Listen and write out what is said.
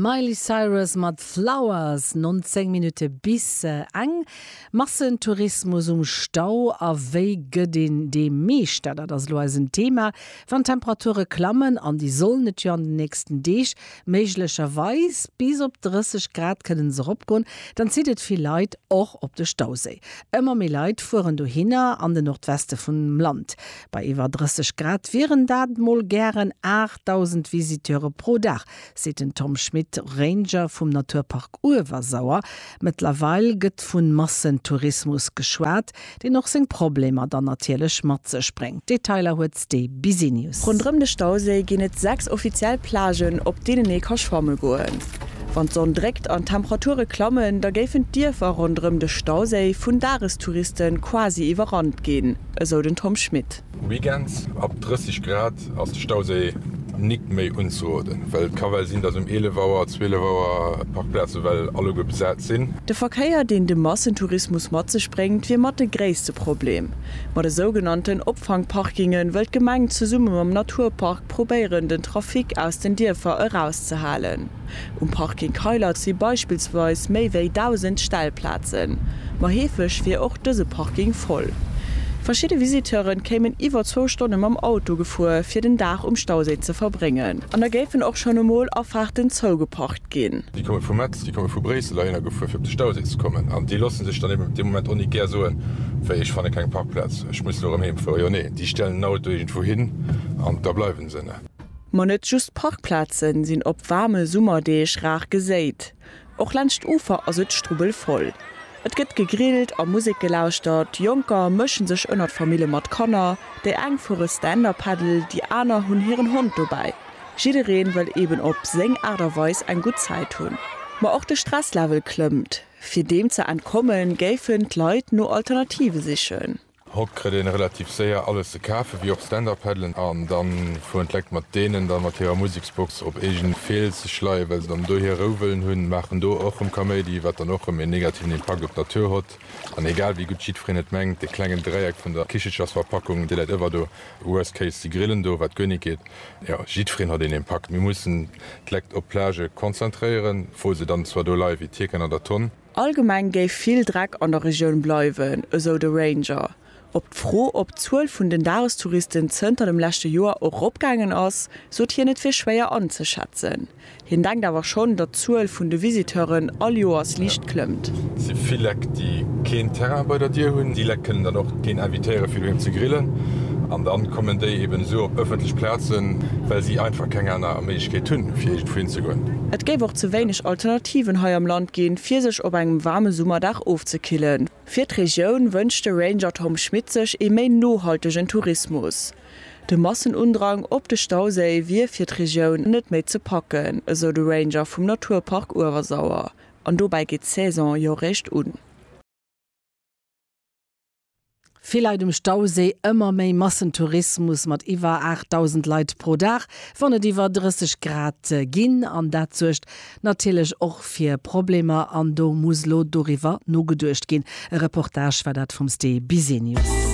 D'Miley Cyrus mat Flowers, 19 Minutte bis eng. Massentourismus um Stau a wéi gëtt een deem Meeschter? Dat ass elo eisen Thema. Wann d'Temperature klammen, an déi sollen et jo an den nächsten Deeg méiglecherweis bis op 30 Grad kënnen se eropgoen, dann zitt et vill Leit och op de Stauséi. Ëmmer méi Leit fueren dohinner, an den Nordweste vum Land. Bei iwwer 30 Grad wieren dat mol gären 8.000 Visiteure pro Dag, seet den Tom Schmit, Ranger vum Naturpark Uewersauer. Mëttlerweil gëtt vu Massentourismus geschwat, deen och seng Problemer dann natierlech mat sech bréngt. Detailer huet d'Stee Businews. Ronderëm de Stauséi ginn et 6 offiziell Plagen, op deenen ee ka schwamme goen. Wann d'Sonn dréckt an d'Temperature klammen, da géifen d'Dierfer ronderëm de Stauséi vun Dagestouriste quasi iwwerrannt ginn. esou den Tom Schmit. Weekends ab 30 Grad ass de Stauséi nik méi unzeroden, well et ka well sinn, dass um 11 Auer, 12 Auer d'Parkplaze well alleguer besat sinn. De Verkéier, deen de Massentourismus mat sech bréngt, wier mat de gréisste Problem. Ma de sougenannten Opfangparkinge wëll d'Gemeng zesumme mam Naturpark probéieren, den Trafic aus den Dierfer erauszehalen. Um Parking Keilert si beispillsweis méi wéi 1.000 Stellplazen, ma heefeg wier och dëse Parking voll. Verschidde Visiteure kéimen iwwer zwou Stonne mam Auto gefuer, fir den Dag um Stauséi ze verbréngen. An da géifen och schonn emol Afaarten zougeparkt ginn. Déi komme vu Metz, déi komme vu Bréissel heihinner gefuer, fir op de Stauséi ze kommen. An déi loosse sech dann eben op dee Moment och net gär soen, wéi, ech fanne keng Parkplaz, ech muss elo erëm heemfueren. Jo, nee, déi stellen den Auto iergendwou hin an da bleiwe se. Ma net just Parkplaze sinn op waarme Summerdeeg rar geséit. Och laanscht d'Ufer ass et strubbelvoll. Et gëtt gegrillt a Musek gelauschtert. Jonker mësche sech ënnert Famille mat Kanner. Déi eng fuere Stand-Up-Paddle, déi aner hunn hiren Hond dobäi. Jidderee wëll eben op seng Aart a Weis eng gutt Zäit hunn. Ma och de Stresslevel klëmmt. Fir deem ze entkommen, géifen d'Leit no Alternative sichen. Hott krëtt een relativ séier alles ze kafen, wéi och Stand-Up-Paddelen an dann fueren d'Lekt mat deenen dann mat hirer Museksbox op eegen Feel ze schleien, well se dann do hier Rou wëllen hunn, maachen do och rëm Kaméidi, wat dann och rëm een negativen Impakt op d'Natur hott. An egal wéi gutt jiddfereen et mengt, dee klengen Dräieck vun der Kichechersverpackung, dee läit ëwer do, worst case, si grillen do, wat guer nit geet. Jo, jiddfereen hott een Impakt. Mir mussen d'Lekt op d'Plage konzentréieren, wou se dann zwar do leie wéi d'Hierken an der Tonn. Allgemeng géif vill Dreck an der Regioun bleiwen, esou de Ranger. Op d'Fro, ob d'Zuel vun den Dagestouristen zënter dem leschte Joer och eropgaangen ass, sot hien et wier schwéier anzeschätzen. Hien denkt awer schonn, datt d'Zuel vun de Visiteuren all Joers liicht klëmmt. Et si vill Leck, déi keen Terrain bei der Dier hunn. Déi Leck kënnen dann och keen invitéiere fir doheem ze grillen. An dann kommen déi eben esou op ëffentlech Plazen, well si einfach keng aner Méiglechkeet hunn, fir iergendwou hinzegoen. Et géif och ze wéineg Alternativen hei am Land ginn, fir sech op engem waarme Summerdag ofzekillen. Fir d'Regioun wënscht de Ranger Tom Schmit sech ee méi nohaltegen Tourismus. De Massenundrang op de Stauséi wier fir d'Regioun net méi ze packen, esou de Ranger vum Naturpark Uewersauer. An dobäi geet d'Saison jo réischt un. Vill Leit um Stauséi, ëmmer méi Massentourismus mat iwwer 8.000 Leit pro Dag, wann et iwwer 30 Grad ginn. An dat suergt natierlech och fir Problemer an do muss lo doriwwer nogeduecht ginn. E Reportage war dat vum Ste Bisenius.